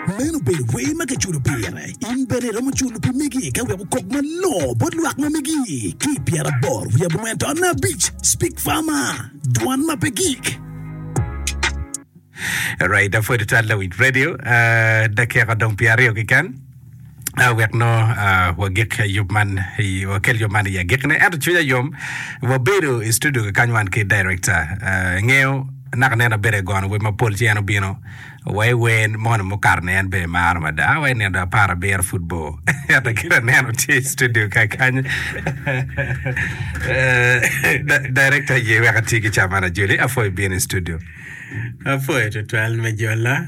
Meno obedo wer ma kiculo pire. In bene iromo culo pi megi ka wek okok malongo bot lwak ma megi. Ki i pyeraboro wiye abongwen to anna abic, Speak Farmer, Dwan ma pe gik. Right, apwod tal lawinj radio. Uh, dakika dong pyeraryo keken. wek nongo wagik yub man wakel yub man i agikine ento cwinya yom wabedo i studio kikany wan ki director ingeyo naka neno abedo egono wer mapol ci en obino wa i wer mono mukato ni en bene maro mada wa i nino apar abiro pud bor ento kite aneno tye i studio kakany director ye wek ati ki caman ajoli apoi ibino i studio Apoyo tutwal me jola.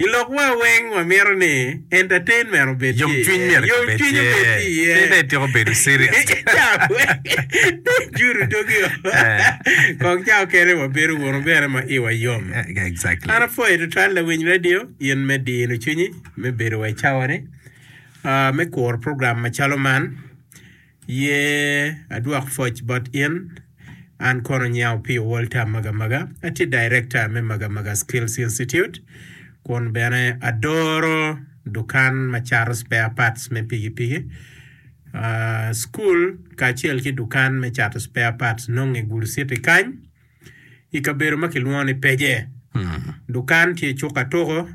I lokwa weng wamito ni entertainment obed ki iye, yomcwiny myero kibed ki iye, obed ki iye. Pe dong ityeko bedo serious. Cawa weng dong judo dogi o. Kong ca okene wabedo wunu bene ma iwa yom. Exactly. An apwoyi tutwal lawiny radio in me dino cwinyi me bedo wa i cawa ni, ah, me kuro program macalo man. Ye adwok pwoc bot in? An kono nyau pi Walter Magamaga, atye Director me Magamaga Skills Institute kun bene adoro dukan ma cato spare parts me pikipiki. Cukul kacel ki dukan me cato spare parts nonge i Gulu City kany i kabedo ma kilwongo ni Peje. Dukan tye cuk ka tuko.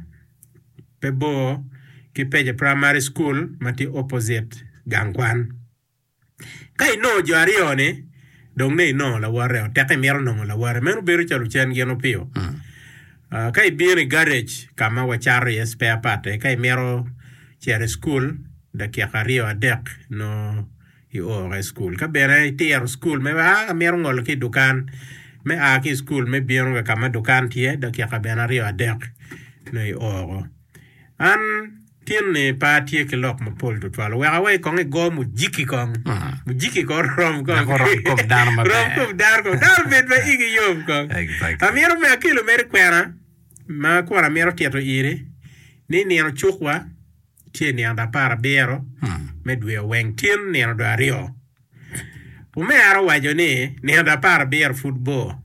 pe bor ki Peje Primary School ma tye opposite gang kwan. Ka inongo jo aryo-ni, dong ne inongo lawote-o. Tek imito nongo lawote. Meno bedo calo ocen gin opiyo. Ah, ka ibino i garage ka ma wacato iye spare part-te, ka imito cito i cukul dakika aryo adek, nongo Ioro i cukul. Ka bene itiro cukul me aa, amito ngolo ki i dukan. Me aa ki i cukul me bino ka ma dukan tye, dakika bene aryo adek nongo ioro. An tin-ni pe atye ki lok mapol tutwal. Oweko awe kong igo mujiki kong. Mujiki kong rom kong. Dok oromo kom dano maber. Rom kom dano kong. Dano obed ma igi yom kong. Exactly. Amito me akelo mere kwena ma kun amito tito iri ni nino cukwa. ce i nino dwe apar abiro me dwe Oweng tin nino dwe aryo. Omera owaco ni, Nino dwe apar abiro pud bor.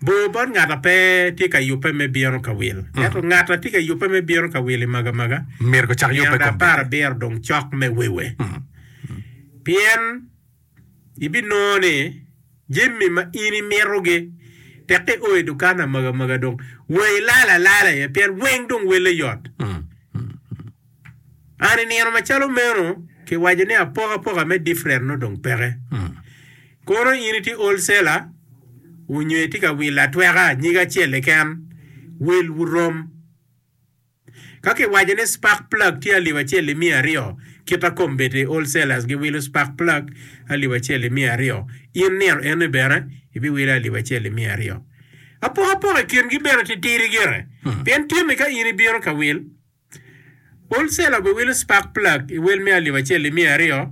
Bor bot ngat a pe tye ka yubbe me bino ka wil. Ento ngat a tye ka yubbe me bino ka wil i magamaga, nino dwe apar abiro dong cok me wiwe. Pien. Ibinongo ni jami ma in imitogi tek i oi dukan amagamaga dong wa ilal alala iye pien weng dong welle yot. An i nino macalo meno kiwaco ni apokapoka me different nongo dong peke. Kono in itye wholesaler onyo itye ka wilo atweka nyige acel keken, wil wurom. Ka kiwaco ni spark plug tye alip acel i miya aryo, kit a kom bete wholesalers giwilo spark plug alip acel i miya aryo, in nino eni bene ibiwile alip acel i miya aryo. Apokapok i kingi bene titidi gire, pien tyeni ka in ibino ka wil wholesaler obiwilo spark plug i wel me alip acel i miya aryo,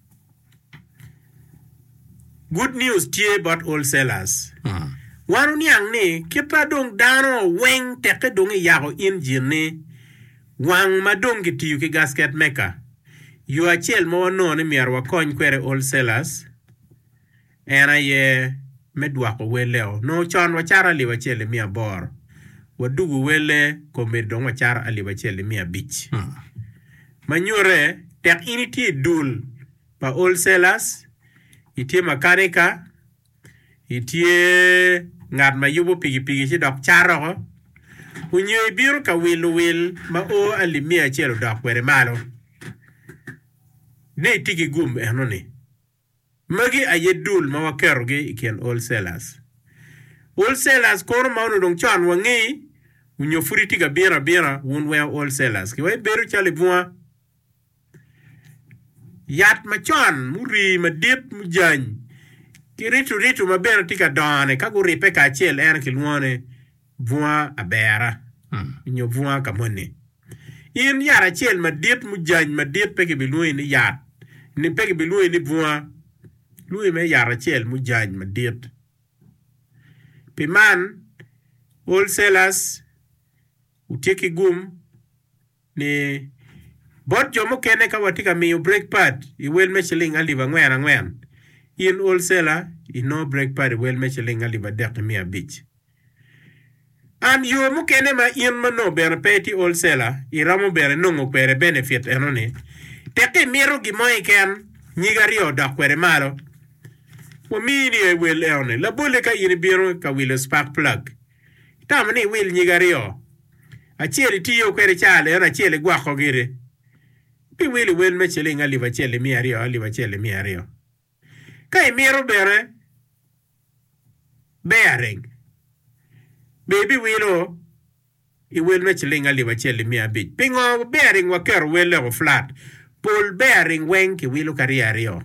Good news tye bot wholesalers. Wan wuniang ni kit ma dong dano weng tekke dong iyako injin ni wang ma dong kitiyo ki gasket maker, yo acel ma wanongo ni myero wakony kwede wholesalers, En aye me dwoko welleo. Nongo con wacaro alip acel i miya aboro, wa dugo welle kombeddi dong wacaro alip acel i miya abic. Ma nyute, tek in itye i dul pa wholesalers, itye makanika, itye ngat ma yubo pikipiki ci dok catoko, onyo ibino ka wilo wil ma o alip miya acel odok kwede malo, dong itye ki gum eno ni. Magi aye dul ma waketogi i kin wholesalers. Wholesalers kono ma onongo dong con wangi onyo pud itye ka bino abina wun weo wholesalers ki wa ibedo calo i bunga yat macon murii madit mujany ki ritu ritu ma bene tye ka dongo ni ka guripe kacel en kilwongo ni Bunga abera, nyo bunga ka moni. In yat acel madit mujany madit pe kibilwongi ni yat, ni pe kibilwongi ni bunga. Lwongi mere yat acel mujany madit. Pi man, wholesalers wutye ki gum. ni bot jo mukene ka watye ka miyo break pad i wel me ciling alip angwen angwen, in wholesela inongo break pad i wel me ciling alip adek ki miya abic. And yo mukene ma in ma nongo bene pe itye wholesela iromo bene nongo kwede benefit enoni, teki imito gin mo keken nyig aryo odok kwede malo, wamiyi ni aye wel enoni labolle ka in ibino ka wilo spark plug Itamo ni iwil nyig aryo, acel itiyo kwede caa leno, acel igwoko gire? Pi wil iwel me ciling alip acel imiya aryo, alip acel imiya aryo. Ka imito bene bearing, be ibiwilo iwel me ciling alip acel imiya abic? Pingo bearing waketo wellego flat? Pol bearing weng kiwilo ka rye aryo.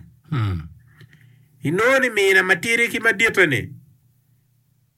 Inongo ni mina matidi ki maditte-ni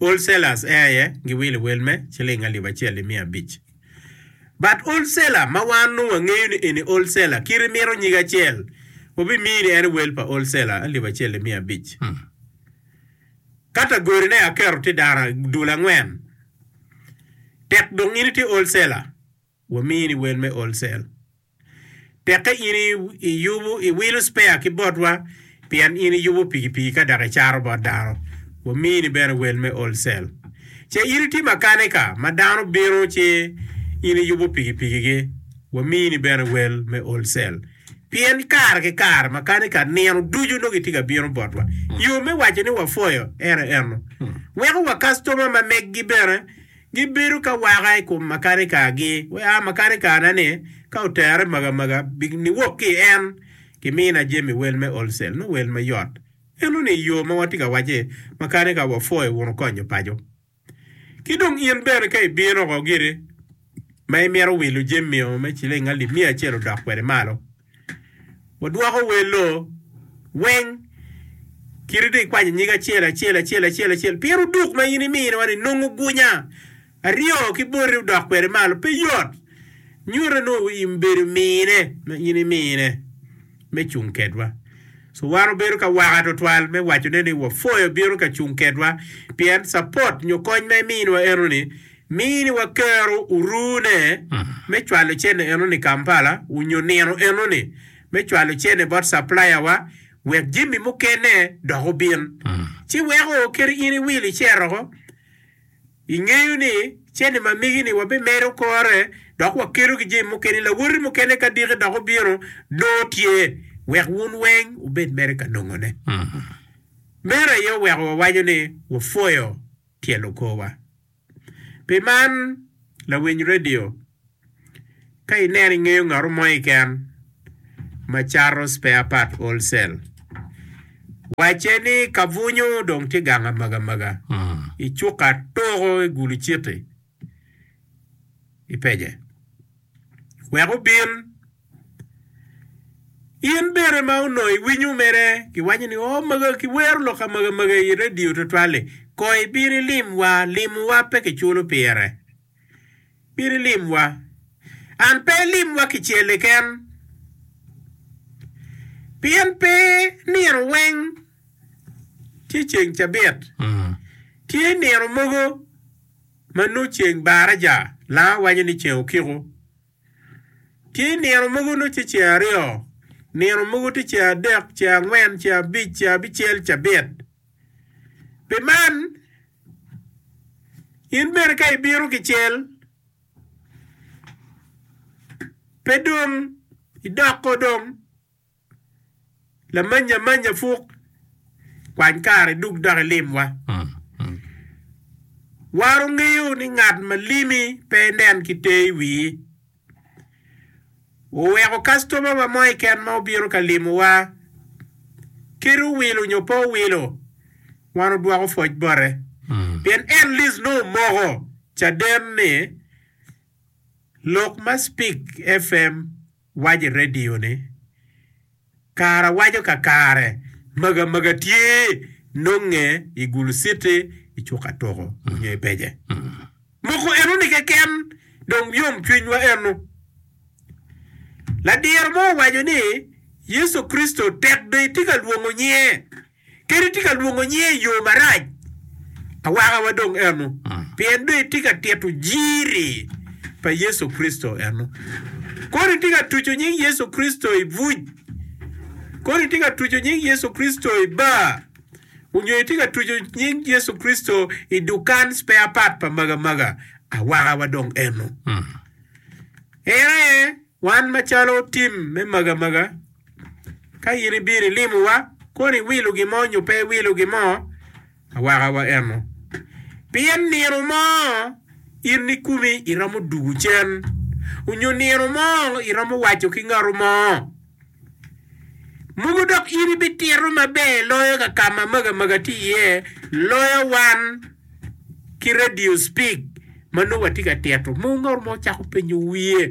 Whole sellers ee aye giwilo wel me ciling alip acel ni miya abic. But whole seller ma wan nongo wangeyo ni eni whole seller kit imito nyige acel wabimiyi ni en wel pa whole seller alip acel ni miya abic. Kata godi ne aketo tye dara dul angwen tek dong in itye whole seller wamiyi ni wel me whole sell. Tekke in iyubu, iwilo spare ki botwa, pien in iyubu pikipiki ka dok icato bot dano, wamini bene wel me wholesale. Ce in iti makanika ma dano bino ci in iyubu pikipikigi, wamini bene wel me wholesale. Pien kare ki kare makanika nino ducu nongo gitye ka bino botwa. Yo me waco ni wapwoyo en aye ennu. Weko wa kastoma ma meggi bene Gibedo ka waka i kom makanikargi, wek a makanikarna ni ka otere magamaga bi niwok ki i en. Kimina jami wel me wholesale nongo wel mayot. Eno ni i yo ma watye ka wacce, makanika wa pho i uno konyo paco. Ki dong in bene ka ibino oko giri ma imito wilo jami o me ciling alip miya acel odok kwede malo, Wadwoko wer lo weng kite dong ikwanyo nyig acel acel acel acel acel pien oduk ma in imino ni nongo gunya aryo ki boti odok kwede malo pe yot nyuto ni in bedo mine ma in imine me cung kedwa so wan obedo ka waka twatwal me wacone ni wafoyo bino ka cung kedwa pien capot nyo kony ma iminwa enoni Mini wa kero orune me cwalo cene enoni Kampala onyo nino enoni me cwalo cene bot supplier wa wek jami mukene dok obin. Ci weko kadi in iwil iceroko, ingeyo ni cene ma migi ni wabimedo kore dok wakedo ki jami mukene, lawoti mukene ka diki dok obino nongo tye wek wun weng wubed mere ka nongo ne. Meno aye oweko wawaco ni wapwoyo tye lokowa. Pi man, lawiny redio, ka ineno ingeyo ngato mo keken ma cato spare part wholesale, wacce ni kabunyu dong tye gang amagamaga i cuka tuko i Gulu Citi, ipece. wek obin. In bene ma onongo iwinyo mere kiwaco ni oo mega kiwero lok amega mega i radio twatwal-li, kong ibin ilim wa, limo wa pe kiculo pire. Bin ilim wa. And pe ilim wa kicel keken. Pien pe nino weng tye ceng cabit. Tye nino mogo. Ma nongo ceng baraja lango waco ni ceng okiko. Tye nino mogo nongo tye ceng aryo, nino mogo tye ceng adek, ceng angwen, ceng abic, ceng abicel, cabit. Pi man, in bene ka ibino kicel, pe dong idoko dong. Lamanya amanya puk, kwany kare duk dok ilimwa. Waro ngeyo ni ngat ma limi pe enen ki te i wii. Wuweko kastomawa mo keken ma obino ka limowa kit owilo nyo pe owilo, wan odwoko pwoc bote. Pien en, Liz, nongo omoko caden ni lok ma Spik FM. Wac i redio ni, Kare awaco kakare, maga maga tye nonge i Gulu City, i cuka tuko nyo i pece. Moko eno ni keken dong yom cwiny wa eno. Ladiro mo owaco ni, Yecu Kricito tek be itye ka lwongo nyinge. Kadi tye ka lwongo nyinge i yo marac, awakawa dong eno, pien dong itye ka tito jiri pa Yecu Kricito eno. Kono itye ka tuco nying Yecu Kricito i buc, kono itye ka tuco nying Yecu Kricito i bar, onyo itye ka tuco nying Yecu Kricito i dukan spare part pa magamaga, awakawa dong eno. En aye, wan macalo tim me magamaga. Ka in ibino ilimowa, kono iwilo gin mo nyo pe iwilo gin mo, awaka wa eno. Pien nino mo in nikumi iromo dugo cen, onyo nino mo iromo waco ki ngatu mo, Mogo dok in ibitito maber loyo ka ka ma maga maga tye iye, loyo wan ki radio speak ma nongo watye ka tito? Mogo ngatu mo cako penyo wiye.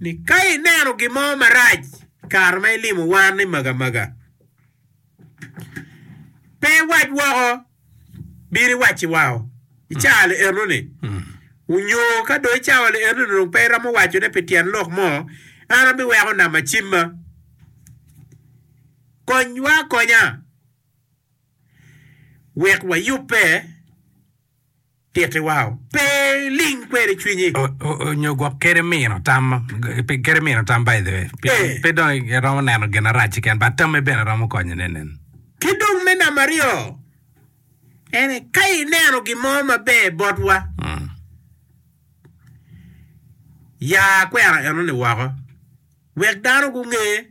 ni ka ineno gin mo marac kare ma ilimo wan ni magamaga pe iwac woko bino iwacci wao i caa li eno ni onyo ka dong i cawa li eno ni dong pe iromo waco ne pi tyen lok mo an abiweko nama cimma konywa akonya wek wayube titiwa o, pe iling kwede cwinyi. Nyo gwok kede mino tam, kede mino tam by the way. Pe, pe dong iromo neno gin arac keken, but tamme bene romo konye ne nen. Ki dong me namba aryo, ene ka ineno gin mo maber botwa, ya kwena eno-ni woko wek dano gunge.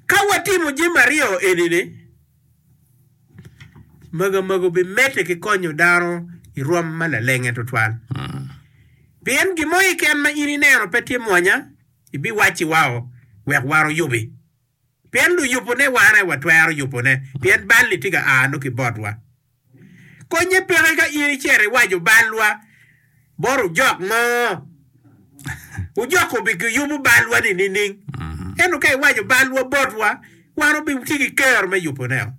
Ka watimo jami aryo eni-ni, magamagu bimedde ki konyo dano i rwom ma lalenge tutwal. Pien gin mo keken ma in ineno pe tye mwanya, ibiwacci wao wek wan oyubi. Pien luyubune wane, watwero yubune, pien bal-li tye ka a nongo ki botwa. Konnye peke ka in icito iwaco balwa bot ojok mo. Ojok obigiyubo balwa-ni nining? Ento ka iwaco balwa botwa, wan wabitye ki kero me yuboneo.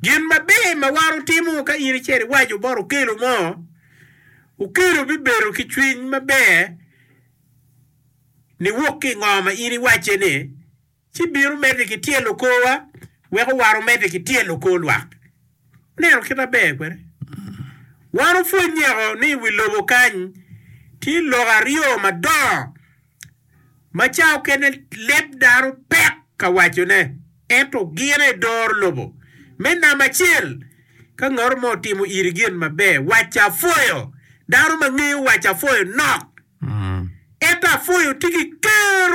Gin maber ma wan wutimo ka in icito iwaco bot okelo mo, okelo bibedo ki cwiny maber niwok ki i ngo ma in iwacce-ni. ci bino medde ki tyelo korwa wek owaro medde ki tyelo kor lwak. Ineno kit ma ber kwede? Wan opwony nyeko ni i wi lobo kany tye lok aryo madongo ma ca okene leb dano pek ka wacone, ento gine doro lobo. Me namba acel, ka ngato mo otimo iri gin maber, wacce apwoyo. Dano ma ngeyo wacce apwoyo nok, ento apwoyo tye ki kero.